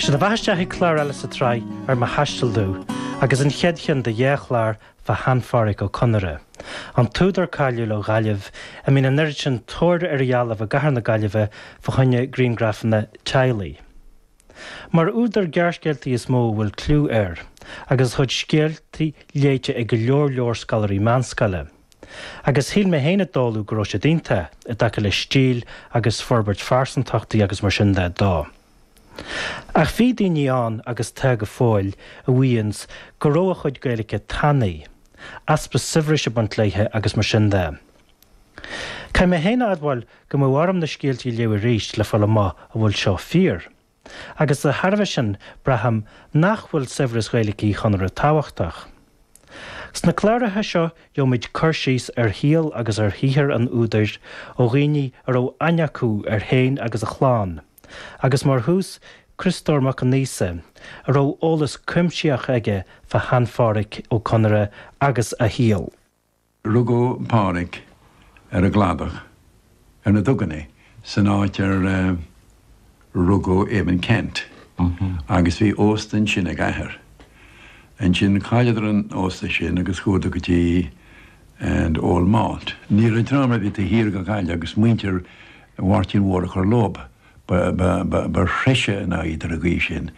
Sé do bheatha isteach ag clár eile sa tsraith ar mo thaisteal domh agus an chéad cheann de dhá chlár fá shean-Phádraic Ó Conaire, an t-údar cáiliúil ó Ghaillimh a mbíonn an oiread sin tóir ar a dhealbh i gcathair na Gaillimhe fá choinne griangrafanna teaghlaigh. Mar údar gearrscéaltaí is mó a bhfuil cliú air agus a chuid scéalta léite ag go leor leor scoláirí meánscoile. Agus shíl mé féin i dtólamh go raibh siad iontach, i dtaca le stíl agus forbairt phearsantachtaí agus mar sin de dó. Ach bhí daoine ann, agus tá go fóill, a mhaíonns go raibh a chuid Gaeilice tanaí, easpa saibhris ag baint léithe agus mar sin de. Caithfidh mé féin a admháil go mbeadh orm na scéaltaí a léamh arís le fáil amach an bhfuil seo fíor. Agus de thairbhe sin, braithim nach bhfuil saibhreas Ghaeilic Uí Chonaire tábhachtach. Sna cláracha seo gheobhaimid cur síos ar shaol agus ar shaothar an údair ó dhaoine a raibh aithne acu air féin agus a chlann, agus mar thús, Criostóir Mac Aonghusa, a raibh eolas cuimsitheach aige fá Shean-Pháraic Ó Conaire agus a shaol. Rugadh Pádhraic ar an gCladach ar na duganna san áit ar rugadh Eamonn Ceannt agus bhí ósta ansin ag a athair. Ansin chailleadar an ósta sin agus chuadar go dtí an Old Malt. Ní raibh dream ar bith taobh thiar de Ghaillimh agus muintir Mháirtín Mhóir a chur leob. ba threise ná iad ar an gcaoi sin.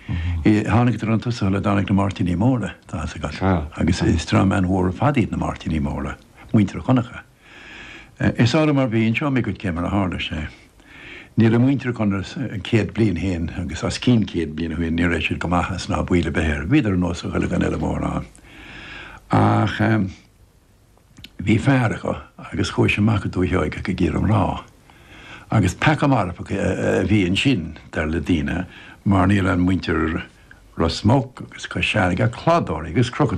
Thánadar chun tosaigh sula dtáinig na Máirtíní Móra, tá a fhios agat, agus is dream an-mhór ar fad iad na Máirtíní Móra, muintir Dhonncha. Is orm mar bhí, inseoidh mé dhuit cé mar a tharla sé. Ní raibh muintir Dhonncha céad bliain ó shoin agus os cionn céad bliain ó shoin, ní raibh siad go maith as ná baol ar bith air, bhíodar ar nós a chuile dhuine eile mórán ach. Bhí fear acu agus chuaidh sé amach go Dúiche Sheoigeach ag iarraidh mná. Agus peaca marfach a bhí annsin dar le daoine mar ní raibh i muinntir Rosmuc agus Cois Fhairrge ach cladóirí agus crochadóirí.